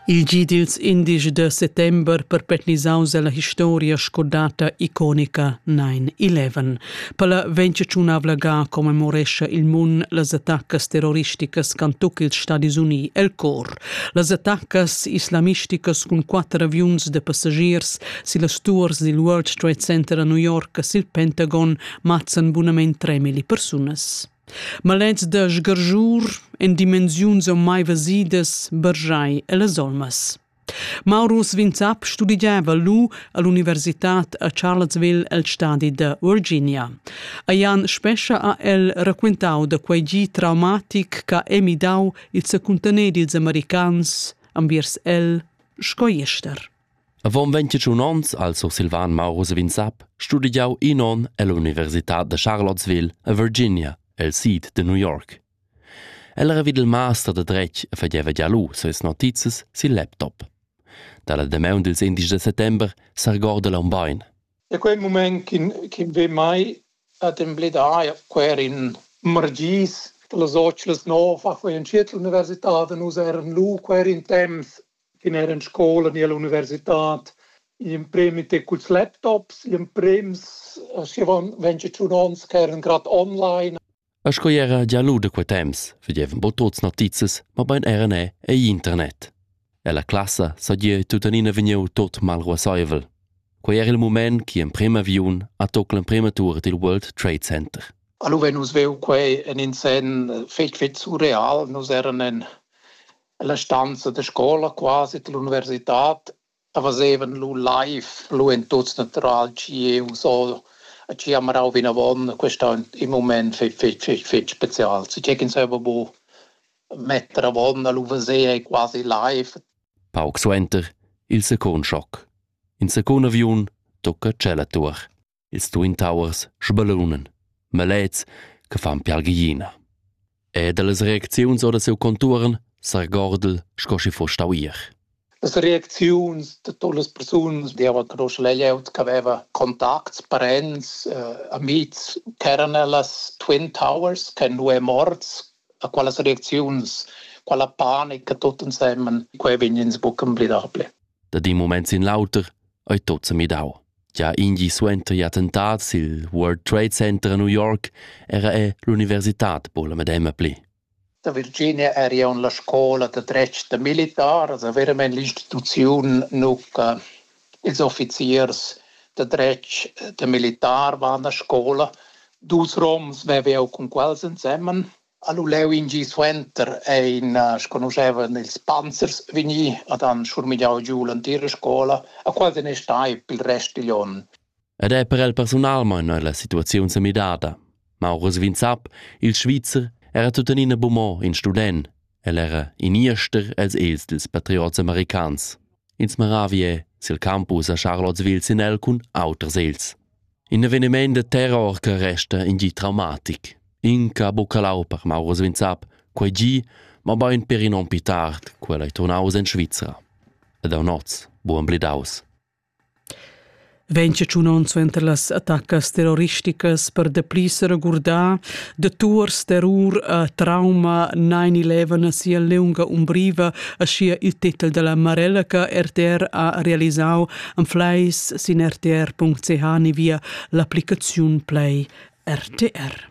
Il gi dils indici da settember perpetnisaus ella historia sco data iconica 9-11. Per la ventgiunavla ga commemorescha il mun las attaccas terroristicas can tuc ils Stadis Uni el cor. Las attaccas islamisticas cun quatter aviuns de passagiers sillas tours dil World Trade Center a New York sil Pentagon mazzan bunament 3.000 persunas. Malens da sgargiur en dimensiuns mai vesidas bargiai ellas olmas. Maurus Vinzap studiava lu all'universitad a Charlottesville el stadi da Virginia. A Jan Spescha ha el raquentau da quei gi traumatic che ha emidau il secuntener dils americans enviers el sco jester. Avon ventgatun onns ha il sursilvan Mauro Savin-Sapp studegiau in onn ell'universitad da Charlottesville a Virginia el sid da New York. El era vid il master da dretg e fageva gia lu ses notizias sil laptop. Dalla damaun dils indesch da settember s'argorda l'aun bein. Da quei mument ch'in ch'in ve mai ad embledar quer in margis, che las otschlas nov ha quei en tschiet l'universitad, nus eran lu quer in temps fin era en scola ni all'universitad in premi te culs laptops, in prems aschivan ventg e tschun ons che eran grad online. A sco era gia lu da quei temps vedevan bo tuts notizias, ma bein era ne ei internet. E la classa sagie tuttenina vegniu tot mal ruasseivel. Quei era il moment che emprem aviun ha tocca l'emprema tour dil World Trade Center. Allora nus veu quei en in sen fetg fetg surreal, nus eran en La stanza da scola, quasi l'universitad, fazevan lu live lu en tuts natural tgi eu so a tgi ha marau vinavon. Quest ha in mument fetg fetg fetg fetg special. Sicür ch'ins haveva bu metter avon a lu veser quasi live. Pauc suenter il secund schoc. In secund aviun tocca tschella tuor. ils Twin Towers sbellunan malets che fan pialghiina. E dallas reacziuns ora seu contuorn s'argordel sco schi foss stau ier. Las reacziuns da todas las persunas deva conosce la glieud che aveva contacts, parents, eh, amics, ch'eran ellas Twin Towers, che nu è morts, a qualas reacziuns, quella panica tot ensemen, quei vegn ins buc emblidable. Da di moments in l'auter ei tot semidau. Gia in gi suenter il attentat sil World Trade Center a New York era è l'universitad po la medema pli. Da Virginia era io en la scola da dretg da militars a veramente l'instituzione nuca ils offiziers da dretg da militar waren a scola dus roms vevo cun quels insemmen Ha lu leu in gi suenter ein sconuschevan ils panzers vegnì ad han schurmigliau giu l'entira scola, a quals ei stai pil rest digl onn. Ed è per el personalmein ei la situaziun sa midada. Maurus Vinzap, il Svizzer, era tuttenina bumò in student. El era in ester els els dils patriots americans. Ins maravie sil campus a Charlottesville sin el cun auters els. In eveniment da terror che resta in di traumatic. Inca buca lau per Mauro Svinsap, quei gi, ma bein per in onn pli tard, quella ei turnaus en Svizra. Ed aun oz, buon blidaus. Ventg tschun onns suenter las attaccas terroristicas per dapli regurdar de tours terror a trauma 9-11 a sia lunga umbriva a sia il titel della Marelleca RTR ha realisau Anfleis sin rtr.ch ni via l'applicaziun Play RTR.